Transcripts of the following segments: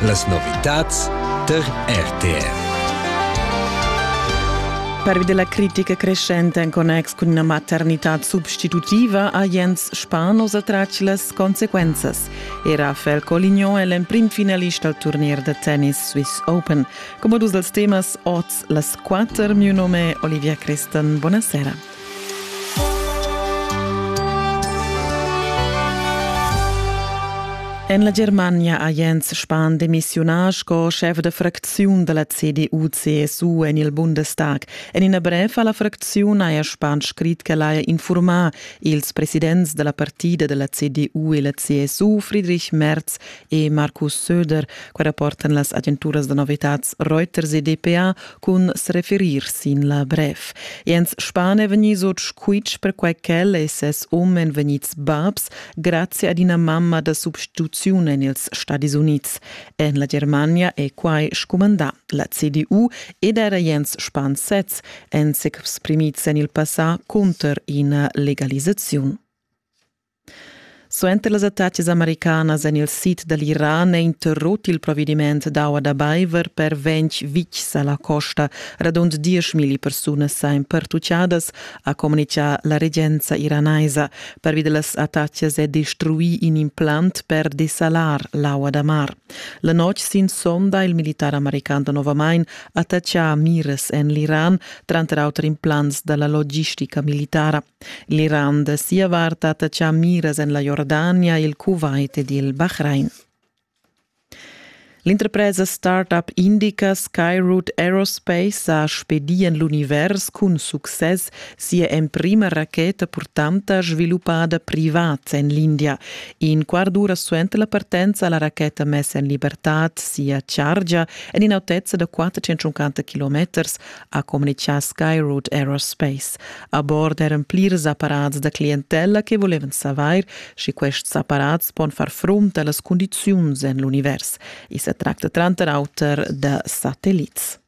Las novitads tar RTR. Pervi della critica crescente in connex con una maternità substitutiva ha Jens Spanos attratg las consequences. Era Fel Colignon è l'emprim finalist al turnier da tennis Swiss Open. Come dus dels temas oz las quatter mio nome Olivia Crestan. Buonasera. En la Germania ha Jens Spahn demissiunà sco schef da fracziun da la CDU-CSU en il Bundestag. En ina brev a la fracziun haja Spahn scrit ch'el haja infurmà ils presidents da la partida da la CDU e la CSU, Friedrich Merz e Markus Söder. Quai rapportan las agenturas da novitads Reuters e DPA cun s'referir sin la brev. Jens Spahn è vegnì sut squitsch perquai ch'el e ses um èn vegnids babs grazie ad ina mamma da substituziun en ils Stadis Unids. En la Germania è quai scumandà. La CDU ed era Jens Spahn sez èn s'exprimids en il passà cunter ina legalisaziun. Suenter las attacas americanas en il sid da l'Iran è interrut il provediment d'aua da baiver per ventg vitgs a la costa. Radund dieschmilli persunas èn pertutgadas, ha communitgà la regenza iranaisa. Pervi da las attacas è destruì in implant per desalar l'aua da mar. La notg sin sonda il militar american novamain attaccà miras en l'Iran, tranter auter implants da la logistica militara. L'Iran da sia vart ha tatschà miras en la Jordania, il Kuwait ed il Bahrain. L'interpresa start-up indica Skyroot Aerospace ha spedì en l'univers cun success sia emprima racheta purtanta sviluppada privat en l'India. In quart d'ura suenter la partenza ha la racheta mess en libertad sia chargia en in'autezza da 450 km ha communitgà Skyroot Aerospace. A bord eran plirs apparats da clientella che volevan savair, sche quests apparats pon far frunt a las cundiziuns en l'univers. I sa tracta tranter auter da satellits.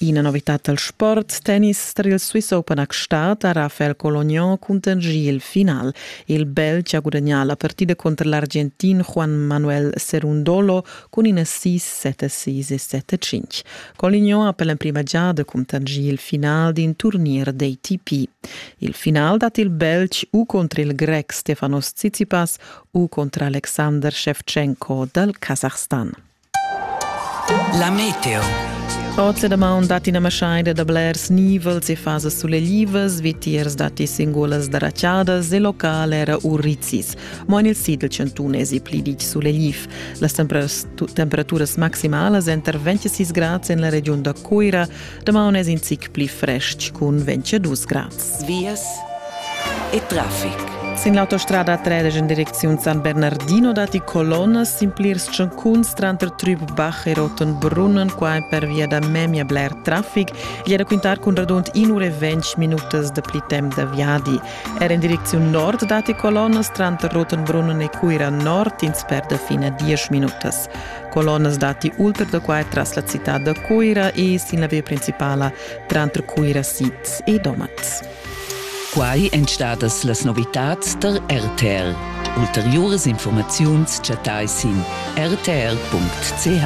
Ina novitad dal sport tennis tar il Swiss Open a Gstaad ha Rafael Colognon cuntanschì il final. Il Belg ha gudagnà la partida cunter l'Argentin Juan Manuel Cerundolo cun ina sis, sette sis e sette cinq. Colignon ha per l'emprima giada cuntanschì il final d'in turnier d'ATP. Il final dat il Belg u contr il Grec Stefanos Tsitsipas u contr Alexander Shevchenko dal Kasachstan. La meteo. Oz da maun dat ina maschaida da blers nivels e fasas suleglivas, vitiers datti singulas darachadas e local era urizis. Mo en il sid dal chantun èsi pli ditg sulegl. Las temperaturas maximalas èn tar 26 grads en la regiun da Cuira. Damaun è in zic pli frestg cun 22 grads. Vias e traffic. Sin l'autostrada 13 en direcziun San Bernardino datti colonnas sin plirs tschancuns tranter Trübbach e Rotenbrunnen, qua pervia da memia bler traffic. È da quintar cun radund 1 ura e 20 minutas da pli temp da viadi. Er en direcziun nord datti colonnas tranter Rotenbrunnen e Cuira Nord, ins perda fin a diesch minutas. Colonnas datti ultra da quai tras la citad da Cuira e sin la via principala tranter Cuira Siz e Domat. Quai èn stadas las novitads tar RTL. Ulteriuras informaziuns chattai sin rtr.ch.